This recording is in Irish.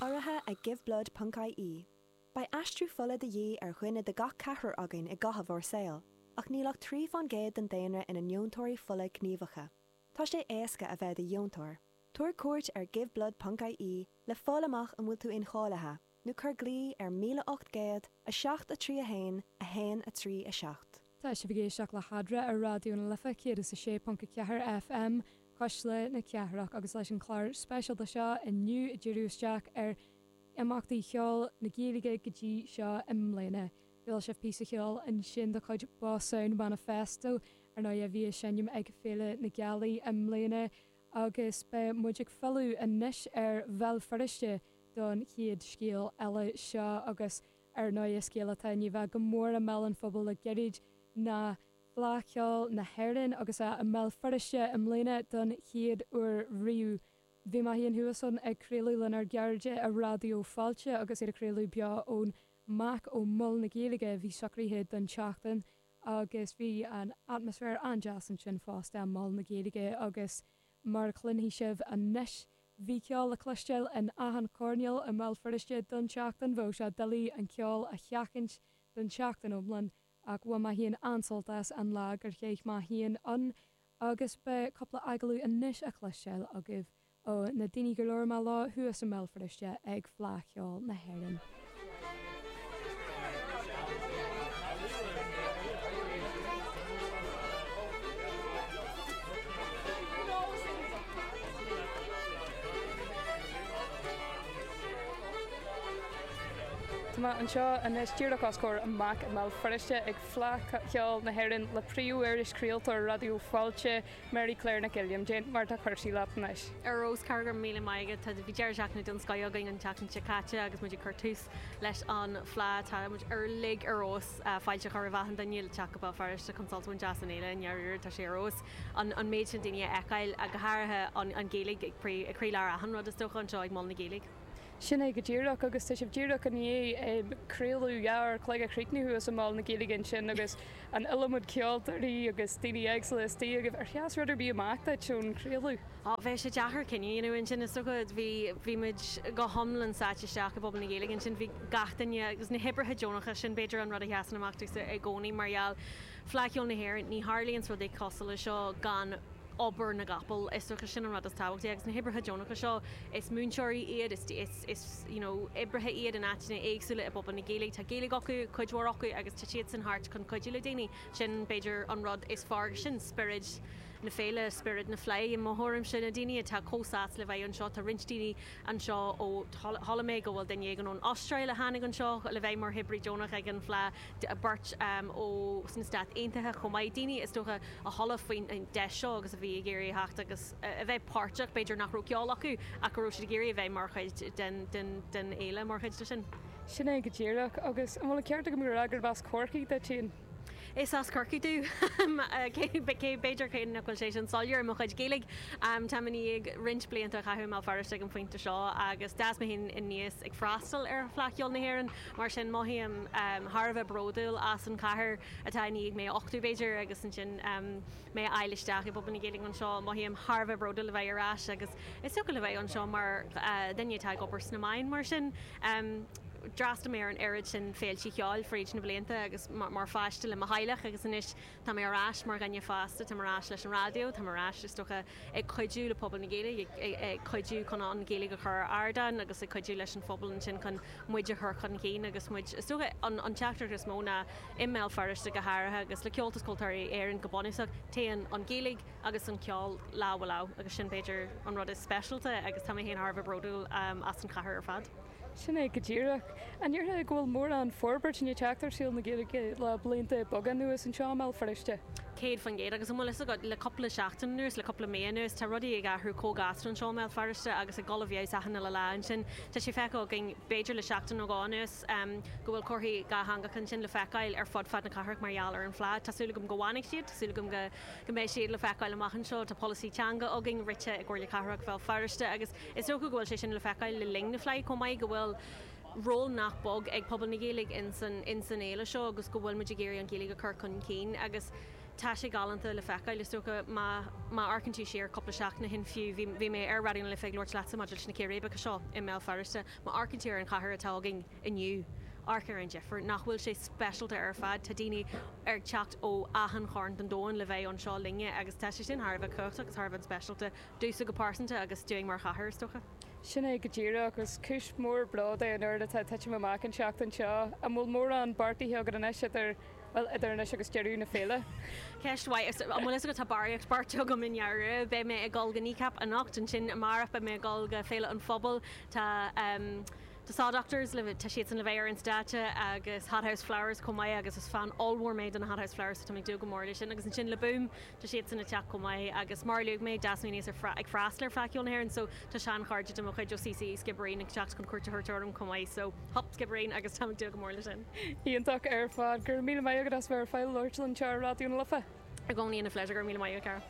Urraithe ag Giveblood Ponc IE, beidh aistriú fola de dhíth ar dhuine de gach ceathrar againn i gcaitheamh ár saoil, ach níl ach trí faoin gcéad den daonra ina ndeontóirí fola gníomhacha. Tá sé éasca a bheith i do dheontóir. Tabhair cuairt ar Giveblood Ponc IE le fáil amach an bhfuil tú incháilithe. nó cuir glao ar 1807 3 1 1 3 7. Tá sibh ag éisteacht le Hadra ar Raidió na Life 106.4 FM Cuisle na Cathrach agus leis an chlár speisialta seo inniu ag díriú isteach ar imeachtaí cheoil na Gaeilge go dtí seo i mbliana. Chuala sibh píosa cheoil ansin de chuid Boss Sound Manifesto ar ndóigh a bhí ag seinm ag Féile na Gealaí i mbliana agus beidh muid ag filleadh anois ar Bhéal Feirste don chéad scéal eile seo agus ar ndóigh scéal atá i ndiaidh a bheith go mór i mbéal an phobail le gairid ná Fleadh Cheoil na hÉireann agus é i mBéal Feirste i mbliana don chéad uair riamh. Bhí mé féin thuas ann ag craoladh lenár gcairde ar Raidió Fáilte agus iad ag craoladh beo ón MAC ó Mol na Gaeilge a bhí socraithe don tseachtain agus bhí an atmaisféar an-deas ansin fosta, Mol na Gaeilge agus Mar a chluinfidh sibh anois, bhí ceol le cloisteáil in achan choirnéal i mBéal Feirste don tseachtain. Bheadh sé doiligh an ceol a sheachaint don tseachtain iomlán, ach bhain mé féin an-sult as an lá gur chaith mé féin ann, agus beidh cúpla agallamh anois le cloisteáil agaibh ó na daoine gur labhair mé leo thuas i mBéal Feirste ag Fleadh Cheoil na hÉireann. Tá mé anseo anois díreach os comhair an MAC i mBéal Feirste ag Fleadh Cheoil na hÉireann le príomhiriseoir, craoltóir Raidió Fáilte, Mary Claire Nic Uilliam, cad é mar atá cúrsaí leatsa? Ar ndóigh, Cathair, míle maith agat. Tá, bhí deireadh seachtaine den scoith againn an tseachtain seo caite agus muid ag cur tús leis an Fleadh. Tá muid uilig ar bís fáilte a chur roimh achan duine le teacht go Béal Feirste chun sult a bhaint as an fhéile. I ndáiríre, tá sé ar fheabhas an an méid sin daoine a fheiceáil, go háirithe an an Ghaeilge ag croílár achan rud is dócha anseo ag Mol na Gaeilge. Sin é go díreach, agus tá sibh díreach i ndiaidh craoladh dhá uair a chloig a chríochnú thuas i Mol na Gaeilge ansin agus, an iliomad ceoltóirí agus daoine éagsúla istigh agaibh. Ar sheas rud ar bith amach duit ón chraoladh? Á, bheadh sé deacair cinneadh a dhéanamh ansin, is dócha. Bhí, bhí muid go hiomlán sáite isteach i bpobal na Gaeilge ansin. Bhí gach duine, agus na hoibrithe deonacha, sin b'fhéidir an rud a sheasann amach domhsa i gcónaí mar gheall, Fleadh Cheoil na hÉireann, ní tharlaíonns rudaí cosúil leis seo gan, obair na gcapall. Is dócha sin an rud is tábhachtaí. Agus na hoibrithe deonacha seo, is múinteoirí iad, is is you know oibrithe iad in áiteanna éagsúla i bpobal na Gaeilge. Tá Gaeilge acu, cuid mhór acu, agus tá siadsan thart chun cuidiú le daoine. Sin, b'fhéidir, an rud is fearr agus sin spiorad na féile, spiorad na Fleidhe i mo thuairimse. Na daoine atá chomh sásta le bheith anseo, tá roinnt daoine anseo ó, chuala mé go bhfuil duine éigin ón Astráil a tháinig anseo le bheith mar oibrí deonach ag an Fleadh. beirt ó sna Stáit Aontaithe chomh maith, daoine is dócha a chuala faoin deis seo agus a bhí ag iarraidh a theacht agus a bheith páirteach, b'fhéidir nach raibh ceol acu ach go raibh siad ag iarraidh a bheith mar chuid den fhéile mar chuid de sin. Sin é go díreach. Agus an bhfuil an ceart agam ag rá gurb as Corcaigh duit féin? Is as Corcaigh dom, cé, b'fhéidir cé nach bhfuil sé sin soiléir i mo chuid Gaeilge. Táim i ndiaidh roinnt blianta a chaitheamh i mBéal Feirste ag an phointe seo agus d'fhás mé féin aníos ag freastal ar Fleadh Cheoil na hÉireann, Mar sin, mothaím thar a bheith bródúil as an chathair atá i ndiaidh mé a uchtú, b'fhéidir, agus ansin mé a fháiltiú isteach i bpobal na Gaeilge anseo. Mothaím thar a bheith bródúil a bheith ar ais agus is dócha le bheith anseo mar dhuine atá ag obair sna meáin. Mar sin, d'fhreastail mé ar an oiread sin féilte ceoil fríd na blianta agus mar pháiste le mo theaghlach agus anois Tá mé ar ais mar dhuine fásta, tá mé ar ais leis an raidió, tá mé ar ais, is dócha, ag cuidiú le pobal na Gaeilge, ag cuidiú chun an Ghaeilge a chur ar ardán agus ag cuidiú leis an phobal ansin chun muid a chur chun cinn agus muid, is dócha, an teachtaireacht is mó ná, i mBéal Feirste go háirithe agus le Comhaltas Ceoltóirí Éireann go bunúsach, téann an Ghaeilge agus an ceol lámh i lámh agus sin b'fhéidir an rud is speisialta agus tá mé féin thar a bheith bródúil as an chathair ar fad. Sin é go díreach. An ndéarfá go bhfuil mórán forbairt i ndiaidh teacht ar saol na Gaeilge le blianta beaga anuas anseo i mBéal Feirste? Céad faoin gcéad. Agus an bhfuil fhios agat, le cúpla seachtain anuas, le cúpla mí anuas, tá rudaí ag athrú chomh gasta anseo i mBéal Feirste agus ag dul i bhfeabhas achan uile lá ansin. Tá sé feicthe againn, b'fhéidir le seachtain nó dhó anuas, go bhfuil comharthaí dhátheangacha ansin le feiceáil ar fud fad na cathrach mar gheall ar an Fhleadh. Tá súil agam go bhfanfaidh siad, tá súil agam go mbeidh siad le feiceáil amach anseo. Tá polasaí teanga againn, rite ag Comhairle Cathrach Bhéal Feirste, agus. Is dócha go bhfuil sé sin le feiceáil le linn na Fleidhe chomh maith, go bhfuil ról nach beag ag pobal na Gaeilge ins an fhéile seo agus go bhfuilimid ag iarraidh an Ghaeilge a chur chun cinn agus tá sé galánta le feiceáil. Is dócha má amharcann tú siar cúpla seachtain ó shin fiú, bhí mé ar Raidió na Life ag labhairt leatsa maidir leis na círéibeacha seo i mBéal Feirste, má amharcann tú ar an chathair atá againn inniu, amharc ar an difir. Nach bhfuil sé speisialta ar fad, tá daoine ag teacht ó achan chearn den domhan le bheith anseo linne agus tá sé sin thar a bheith cumhachtach agus thar a bheith speisialta. domhsa go pearsanta agus dúinn mar chathair, is dócha. Sin é go díreach, agus cúis mhór bród é an oiread atá ag titim amach an tseachtain seo. An bhfuil mórán beartaithe agat anois idir, bhuel, idir anois agus deireadh na féile? Ceist mhaith. Is, an bhfuil fhios agat, tá barraíocht beartaithe agam i ndáiríre. Beidh mé ag dul go Kneecap anocht, ansin amárach beidh mé ag dul go Féile an Phobail, tá ehm The Saw Doctors le, tá siadsan le bheith ar an stáitse, agus Hothouse Flowers chomh maith, agus is fan ollmhór mé de na Hothouse Flowers so tá mé ag dúil go mór leis sin, agus ansin le Boom, Tá siadsan ag teacht chomh maith agus mar a luaigh mé Des beidh mise ag freastal ar Fleadh Cheoil na hÉireann so tá sean chairde de mo chuid ó CCÉ Sciobairín ag teacht chun cuairt a thabhairt orm chomh maith so hup Sciobairín agus táim ag dúil go mór leis sin. Iontach ar fad. Go raibh míle maith agat as bheith ar fáil labhairt linn anseo ar Raidió na Life. I gcónaí ina phléisiúr. Go raibh míle maith agat, cara.